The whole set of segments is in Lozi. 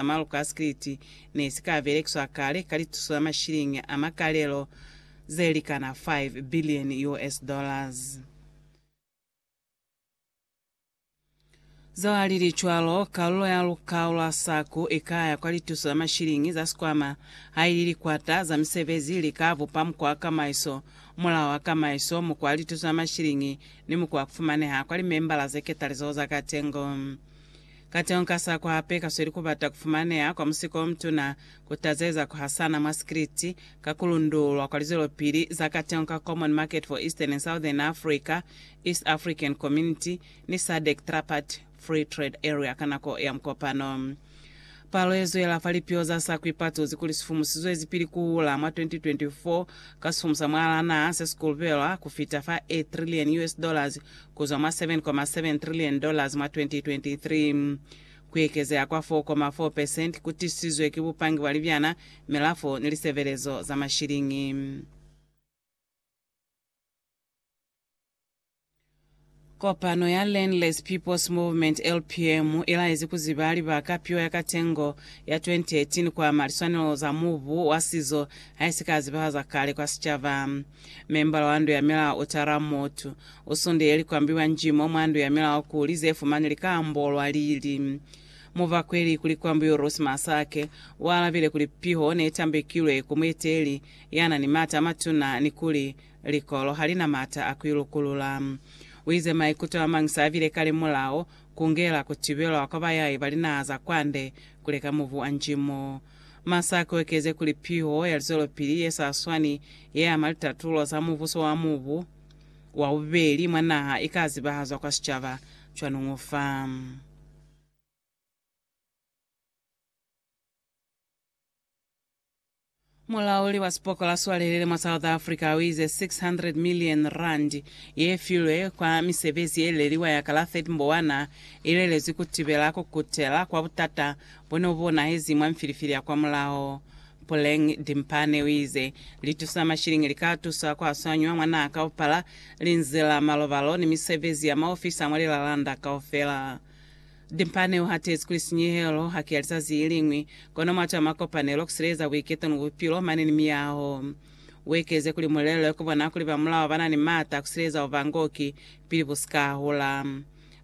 sa maluka a sikiliti ne si ka belekiswa kale ka lituso la mashilingi a makalelo ze likana 5 biliyoni US dollars. Zalili cwalo, kalulo ya lukao lwa SACU i ka ya kwa lituso la mashilingi za sikwama haili likwata za misebezi li ka bupa mukwa wa kamaiso, mulao wa kamaiso, mukwa wa lituso la mashilingi ni mukwa wa ku fumaneha kwa limembala ze ketalizaho za katengo. Kateñi ka sa kuhape kasweli kubata kufumaneha kwa musiko omutuna, kutazeza kuhasana mwa sikriti, ka kulundulwa kwa lizwelopili za kateñi ka Common Market for Eastern and Southern Africa, East African Community, ni SADC Tripartite Free Trade Area ka nako ya mukopano. Palo yezwela fa lipiho za sa kuipatuzi kuli sifumu sizwezi pili kuhula mwa 2024 ka sifumu sa mwalaa naha sesikulubelwa kufita fa a trillion US dollars kuzwa mwa K7.7 trillion mwa 2023. Kuekezeha kwa 4.4 percent kutisizwe ki bupangi bwa libyana, milafo ni lisebelezo za mashiliñi. Kopano ya Landless People's Movement, LPM, ilaezi kuziba libaka piwa ya katengo ya 2018 kuama liswanelo za mubu wa sizo haisika zibahaza kale kwa sicaba. Membala wa ndu ya milao u tala mutu u sundile likwambi lwa njimo mwa ndu ya milao kuli ze fumani li ka ambolwa lili. Mubakweli ku likwambi u Ruth Masake u alabile kuli piho ne tambekilwe ku mueteli ya na ni mata a matuna ni kuli likolo ha li na mata a ku i lukulula. U ize maikuto a mañi sa bile kale mulao ku ngela ku tibelwa kwa bayai ba linaha za kwande ku leka mubu wa njimo. Masa ki okeze kuli piho ya lizwelopili ye sa swani ye ama litatulo za mubuso wa mubu wa bubeli mwa naha i ka zibahazwa kwa sicaba cwanuñu fa. Mulauli wa sipokola swalelele mwa South Africa o ize 600 million rand ye filwe kwa misebezi ye leliwa ya kala 30 Mbowana i lelezwi ku tibela ku kutela kwa butata bo ne bu bonahezi mwa mfilifili ya kwamulaho. Puleng Dimpane o ize, Litusa mashilingi li ka tusa ku aswanywa mwa naha kaupala, linzi la malobalo ni misebezi ya maofisi a mwa lilalanda kaufela. Dimpane o hatezi kuli sinyehelo ha ki ya lizazi iliñwi, kono mwati wa makopanelo, ku sileeza buiketo ni bupilo mane ni miyaho. U ekeze kuli mulelo ki bona kuli bamulaho ba na ni maata a ku sileeza bubangoki pili bu si ka hula.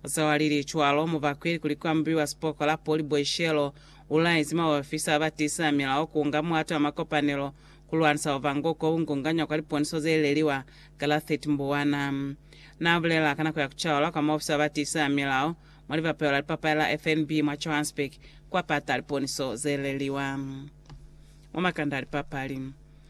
Zeo alili cwalo mubakwe ilikuli kuambuiwa sipoko la Poli Boishelo, ulaezi maofisa abatiisisa milao kuunga muhato wa makopanelo kulwanisa bubangoki obungunganywa kwa liponiso zeileliwa Galathit Mbuwana. Naabulela ka nako ya kucaula kwa maofisa abatiisisa milao mwa libapeho la lipapali la FNB mwa Johannesburg kwapata liponiso zeileliwa mwa makanda a lipapali.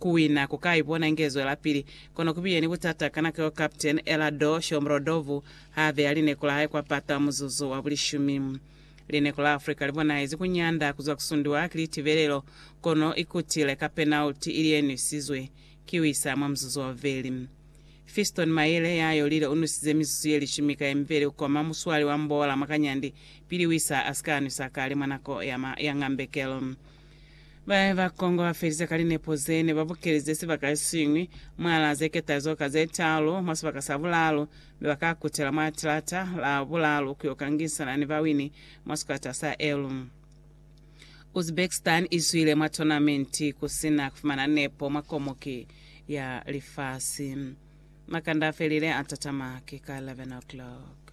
Ku wina ku ka ipona inge zwelapili, kono ku biye ni butata ka nako yeo Captain Elador Shomurodov ha beya lineku la hae kwa pata muzuzu wa bulishumi. Lineku la Africa li bonahezi ku nyanda ku zwa ku sundiwa ki litibelelo, kono i kutile ka penalty ili ye nwisizwe ki Wissa mwa muzuzu wa bubeli. Fiston Mayele ya yolile u nwisize mizuzu ye lishumi ka ye mibeli ku koma muswali wa mbola mwa kanyandi pili Wissa a si ka nwisa kale mwa nako ya ngambekelo. Ba ne ba Kongo ba felize ka linepo ze ne ba bukelize sibaka se siñwi mwalaa ze ketazo ka ze taalu mwa sibaka sa bulaalu, mi ba ka kutela mwa tilata la bulaalu ku yo kangisana ni bawini mwa sikwata sa Elu. Uzbekistan i zwile mwa tonamenti ku si na ku fumana nepo mwa Komuki ya Lifasi. Makanda a felile a tatama ki ka 11 o'clock.